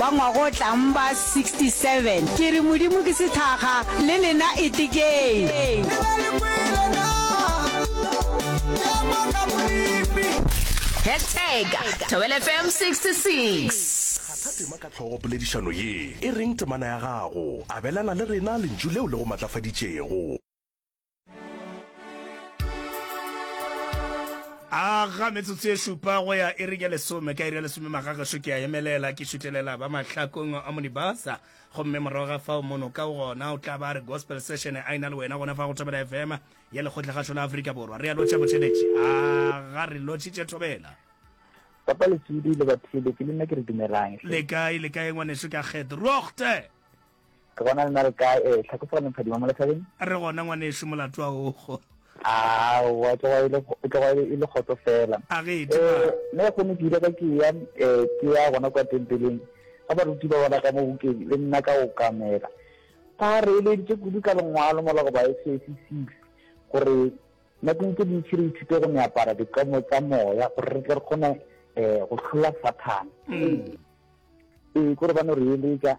Wa ngwagotlang ba 67. Ke re Modimo ke sethakga, le lena etekeng. Hashtag Thobela FM 66. Kgatha tema ka hlogo poledišano ye e reng temana ya gago. Abelana le rena lentšu leo le go matlafaditšego. a ga metsotso e šupa go ya e re ya lesome ka iri ya lesome magagešo ke a emelela ke šutelela ba mahlakong a monibasa gomme morago ga fao mono ka gona o tla ba re gospel session a ena le wena gona fa go thobela fm ya lekgotlagašo la aforika borwa re a lotšha botšheletše a ga re lotšhitše thobela papa lesudi le baphile ke le nna ke re dumelang le kae le kae ngwaneso ka kgethe rochte Ke bona le na le kae? Eh, tlhako fela mphadima mo lethabeng. Re gona ngwanešu molato wa ogo. Aowa, e tloga e le e tloga e le kgotso fela. A ge e tloga. Eh, ne go ne ke ile ka ke ya eh ke ya gona kwa tempeleng. Ga baruti ba bona ka mo bukeng le nna ka o kamela. Ba re eleditše kudu ka lengwalo mola go ba SAC 6 gore nakong tse dintši re ithute go meapara dikomo tsa moya gore re tle re kgone eh go hlola Sathane. Mm. Eh, kore ba no re eletša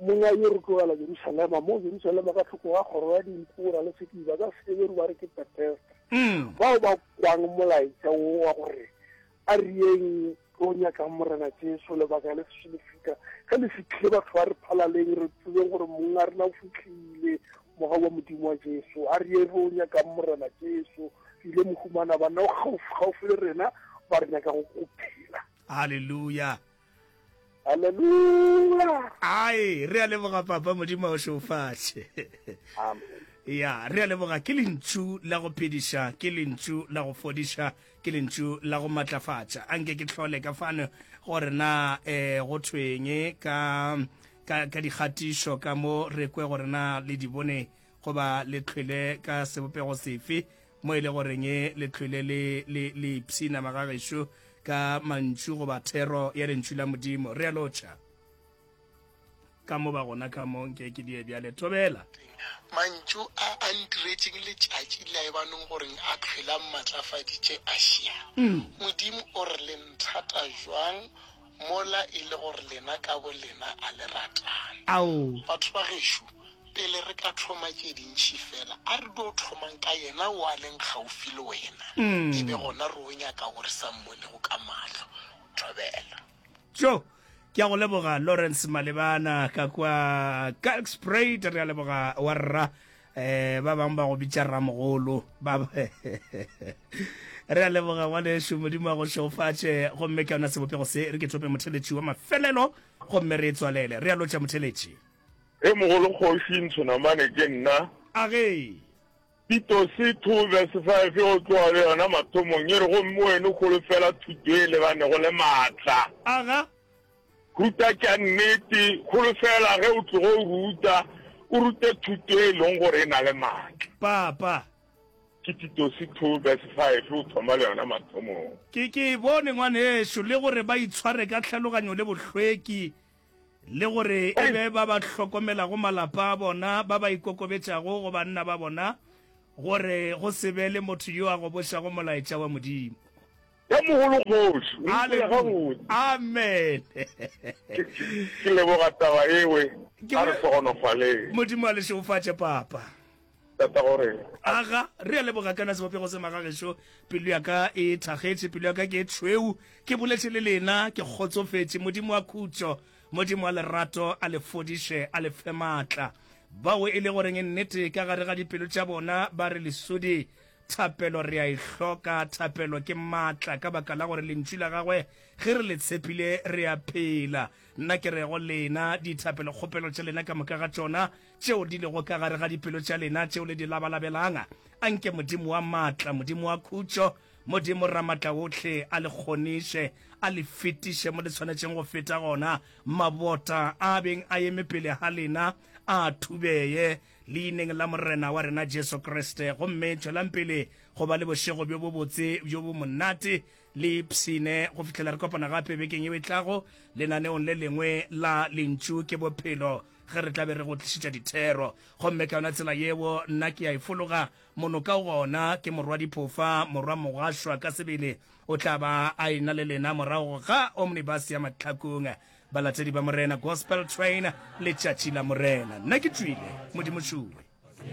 Mong a yo re tlogela Jerusalema, mo Jerusalema ka tlhoko ga kgoro ya dinku, ra le sediba ka Seheberu ba re ke Betesda. Bao ba kwang molaetša wo wa gore, Ariyeng tlo nyakang Morena Jesu, lebaka le sešo le fihla. Ge le fihlile, batho ba re phalaleng, re tsebeng gore mong a rena o fihlile, Mogau wa Modimo wa Jesu. Ariyeng re o nyakang Morena Jesu, re ile mo humana, banna o kgaufsi-kgaufsi le rena, ba re nyaka go go phela. Haleluya! Haleluya. Ai, re a leboga papa modimo a o šofatše. Amen. Ya, re a leboga ke lentšu la go phediša, ke lentšu la go fodiša, ke lentšu la go matlafatša. A nke ke tlhole ka fano gore na eh go thweng ka ka ka dikgatišo ka mo re kwe gore na le di bone goba le tlhwele ka sebopego sefe Mo e le gore nge le hlwele le, le, le ipshinama ga gešo ka mantšu goba thero ya Lentšu la Modimo, re a lotšha. Ka mo ba gona ka mo, nke ke die bjale. Thobela. Mantšu a a ntiretšeng letšatši la ebanong gore a hlwele a mmatlafaditše, a šia. Modimo o re le nthata bjang! Mola e le gore lena ka bolena a le ratane. Ao, batho ba gešo, pele re ka thoma tše dintši feela, a re dio thomang ka Yena o a leng kgaufsi le wena, e be gona re o nyaka wo re sa Mmonego ka mahlo. Thobela. Tjo! Ke a go leboga, Lawrence Malebana, ka kwa Kalkspruit. Re a leboga, wa Rra. Eh, ba bang ba go bitša ramogolo ba re a leboga ngwane ešo modimo a go šeofatše gomme ke yona sebopego se re ke thope motheletši wa mafelelo gomme re e tswalele re a lotša motheletši e mogolo kgoši ntshonamane ke nna a ge pitose two verse five o tloga le yona mathomong e re gomme wene kgolo fela thuto e lebanego le maatla aga Ruta tša nnete, holofela ge o tlogo o ruta, o rute thuto e leng gore e na le maatla. Papa. Ke Titose 2 verse 5 o thoma le yona mathomong. Ke, ke e bone, ngwanešu, le gore ba itshware ka tlhaloganyo le bohlweki, le gore e be ba ba hlokomelago malapa a bona, ba ba ikokobetšago go banna ba bona, gore go se be le motho yo a gobošago molaetša wa Modimo. Ka mogolo kgoši, o ipela gabotse. Amen. Ke leboga taba ewe, a re segonofaleng. Modimo a le šeofatše, Papa. Tata gore. Aga, re a leboga kana sebopego se magagešo, pelo ya ka e thagetše, pelo ya ka ke e tšhweu, ke boletše le lena, ke kgotsofetše. Modimo wa khutšo, Modimo wa lerato, a le fodiše, a le fe maatla. Bao e le goreng nnete ka gare ga dipelo tša bona ba re lesodi, Thapelo re a e hloka. Thapelo ke maatla ka baka la gore Lentšu la Gagwe, ge re le tshepile, re a phela. Nna ke re go lena, dithapelokgopelo tša lena ka moka ga tšona, tšeo di lego ka gare ga dipelo tša lena, tšeo le di labalabelang, a nke Modimo wa maatla, Modimo wa khutšo, Modimo Ramatlaohle, a le kgoniše, a le fetiše mo le swanetšeng go feta gona. Mabota a a beng a eme pele ga lena a thubeye, Leineng la Morena wa rena Jesu Kriste, gomme tšwelang pele go ba le bošego bjo bobotse bjo bo monate le ipshine go fihlela re kopana gape bekeng yeo e tlago lenaneong le lengwe la Lentšu ke Bophelo, ge re tla be re go tlišetša dithero. Gomme ka yona tsela yeo nna ke a e fologa mono ka gona, ke Morwadiphofa, Morwa Mogašwa ka sebele o tla ba a e-na le lena morago ga omnibus ya mahlakong. Balatedi ba Morena Gospel Train, Letšatši la Morena. Nna ke tšwile, Modimo tšue.